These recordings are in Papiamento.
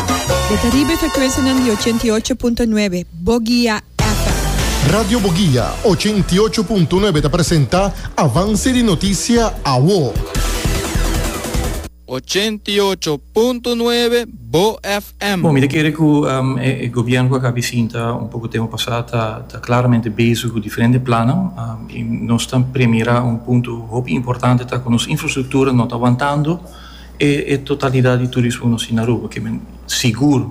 Dje ta riba e frekuensianan di ochenta i ocho punto nuebe, Boguia FM. Radio Boguia ochenta i ocho punto nuebe ta presenta Avanse di Notisia Awo. Ochenta i ocho punto nuebe, Bo FM. Bon, mi ta kere ku e gobièrnu ku a kaba di sinta un poko tempu pasá ta klaramente bezig ku diferente plannan i nos ta premierá un punto hopi importante ta ku nos infrastruktura no ta wantando. E totalidat di turismo nos tin na Aruba, ke men sigur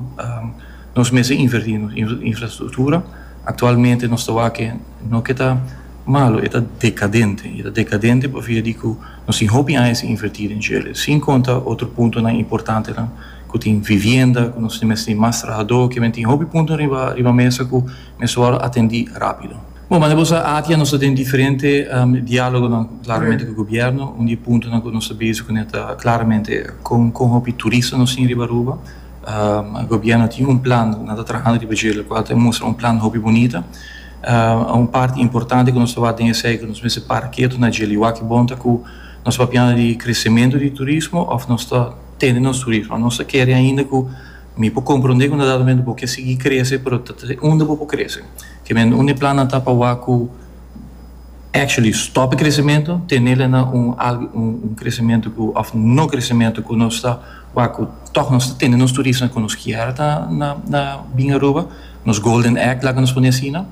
nos mester inverti nos infrastruktura. Aktualmente nos ta wak ke no ke ta malu, e ta dekadente. E ta dekadente pa via di ku nos tin hopi aña sin inverti den Chele. Sin konta otro puntonan importantenan ku tin vivienda, ku nos mester tin mas trahadó, ke men tin hopi punto riba mesa ku mester wòrdu atendí rápido. Bon, mane bo sa, aki a nos ta den diferente dialogonan klaramente ku gobièrnu. Un di e puntonan ku nos ta bezig ku ne ta klaramente kon kon hopi turista nos tin riba Aruba. Gobièrnu a tin un plan, nan ta trahando riba dje, lo kual ta mustra un plan hopi bunita. Un parti importante ku nos ta wak den esei ku nos mester para ketu na djel i wak bon ta ku nos ta papiando di kresementu di turismo òf nos ta tene nos turismo. Nos ta kere ainda ku. Mi por comprende cu na dado momento bo kier sigui crece pero ta ta unda bo por crece. Ke men unda e plannan ta pa wak cu actually stop e crecemento, tene la na un algo un un crecemento cu of no crecemento cu nos ta wak cu toh nos ta tene nos turisnan cu nos kier ta na na bin Aruba, nos golden egg laga nos pone asina.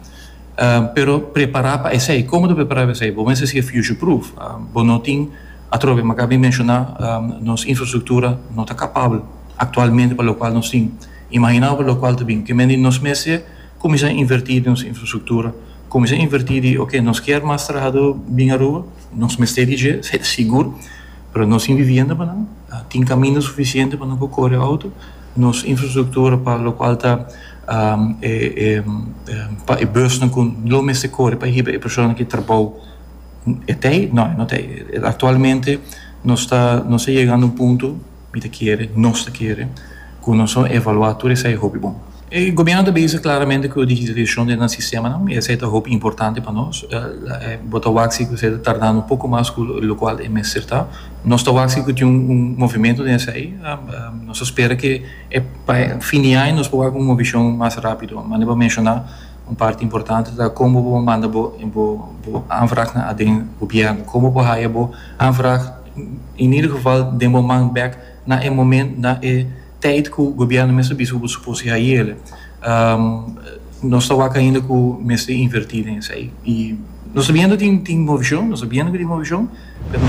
Pero prepara pa esey, como ta prepara pa esey? Bo mester sigui future proof, bo no tin atrobe, mi a caba di menciona nos infrastructura no ta capabel. aktualmente pa lokual nos tin imahiná pa lokual ta bin kimen di nos mes e kuminsá invertí di nos infrastruktura kuminsá invertí di oke nos kier mas trahadó bin Aruba nos mester di dje esei ta sigur pero nos tin bibienda pa nan tin kaminda sufisiente pa nan por kore outo nos infrastruktura pa lokual ta e e pa e busnan ku lo mester kore pa hiba e persona ku trabou e t'ei no e no t'ei aktualmente nos ta nos ta yega na un punto. Mi ta kere, nos ta kere, ku nos lo evaluá tur esei hopi bon. E gobièrnu ta bisa klaramente ku digitalisashon den nan sistemanan i esei ta hopi importante pa nos. Bo ta wak si ku esei ta tardando un poko mas ku lokual e mester ta. Nos ta wak si ku tin un movimentu den esei. Nos ta spera ku pa e fin di aña nos por wak un movishon mas rápido. Mane pa menshoná un parti importante ta kon bo por manda bo aanvraagnan aden gobièrnu, kon bo por haya bo aanvraag. in ieder geval den bo man bek na e momen na e tijt cu gobierno mester bisa cu bo suppos di hayele. Nos ta wak ainda cu mester inverti den esey y nos ta biendo tin tin movicion, nos ta biendo cu tin movicion pero.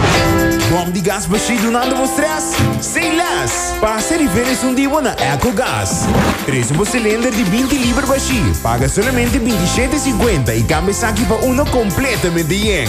Bom di gas bashí dunando bo stress? Say less! Pasa e riferis un di bo na Ecogas. Precio bo cilinder di binti liber bashí, paga solamente binti shete e cincuenta y cambia esaki pa uno completamente yen.